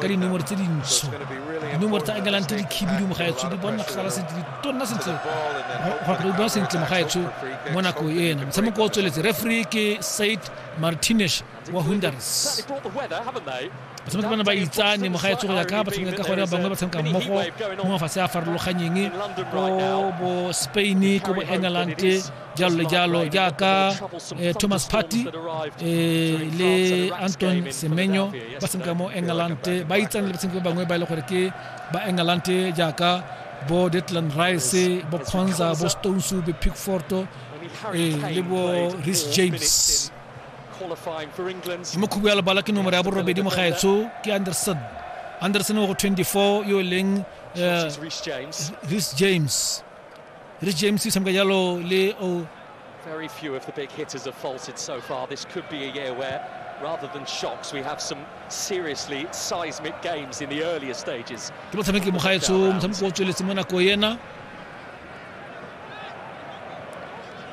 ka dinomoro tse dintsho dinomoro tsa england di khibidu mogaetsho di bona sala sentle di tonna sentle di bona sentle mogaetsho mo nako ena motshameko o tsweletse referee ke said martinez wa hunders batshameki bana ba itsane mogaetsho go ya ka batshameka ka gone bangwe ba tshameka mmogo mo mafatshe a farologanyeng ko bo spain ko bo england jalo le jalo jaaka eh, thomas party eh, le anton semenyo ba tshameka mo england ba itsane le batshameki ba bangwe ba e le gore ke ba england jaaka bo detland rice bo conza bo stones be pickforto eh, le bo ris james mo khubu ya lebala ke nomoro ya borobedi mo gaetsho ke anderson anderson o go 24 yo e leng ris james Rich James o tshameka jalo le o Very few of the big hitters have faltered so far. This could be a year where, rather than shocks, we have some seriously seismic games in the earlier stages. ke motshameki mogaetsho motshameko o tsweletse mo nako ena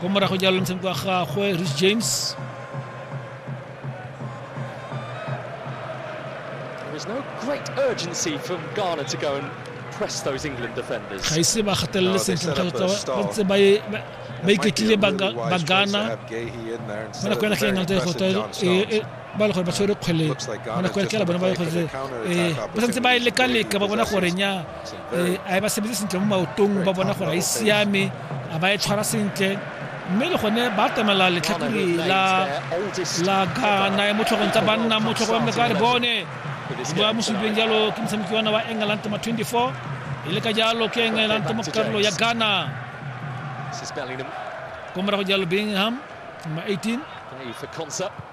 Como rajo jàlloon seen ko xa xoe Rich James There was no great urgency from Ghana to go and press those England defenders. ga ise ba gatelele sentle kgotsa ba ntse ba e- ba- ba iketlile ba ga- ba gana mo nako ya ntlha ya nalta go twa ba le gore ba tshwere kgwele mo nako ya ntlha ya bone ba le gore eh, ba santse ba e leka-leka ba bona gore nya e, a e ba sebetse sentle mo maotong ba bona gore a e siame a ba e tshwara sentle mme le gone ba atamela letlhakore la ghana ya motlhogong tsa banna motlhogo wa mleka re bone ba mo supileng jalo ke motshameki wana wa england ma 24 e le ka jalo ke england mo karolo ya ghana ko morago jalo bingham ma 18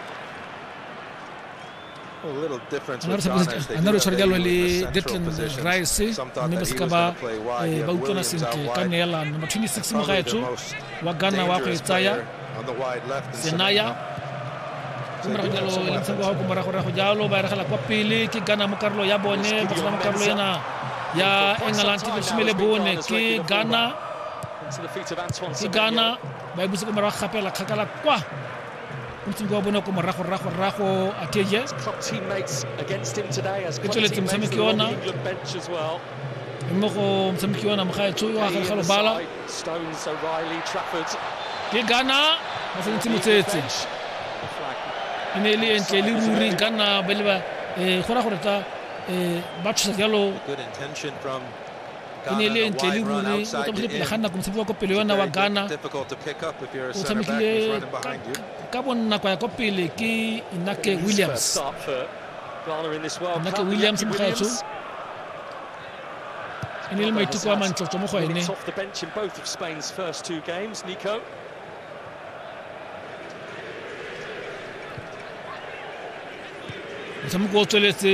anaro tshware jalo le detlin rice mme ba seka ba eh, ba utlwana sentle ka neelano number 26 mo gaetsho wa ghana wa go e tsaya senaya ko morago jalo e ntsha kwa ko moragorago jalo ba eregela kwa pele ke ghana mo karolo ya bone ba tshela mo karolo ena ya england ke lesome le bone ke ghana ke ghana ba e busa ko morago gapela kgakala kwa utsing kwa bona ko morago rago rago ateja e tsweletse motshameki ona mme go motshameki ona mogaetsho yo a gare ga lobala ke ghana ba tshwanetse motsetse e ne e le entle le ruri nka nna ba le ba um go ra gore ta um ba tshosa jalo e ne e le ntle le ruri o tsamaile pele ga nako motshameki wa ko pele yona wa ghana o tshamekile ka bonnako ya ko pele ke inake williams inake williams mogaetsho e ne le maiteko a mantlotlo mo go ene motshameko o tsweletse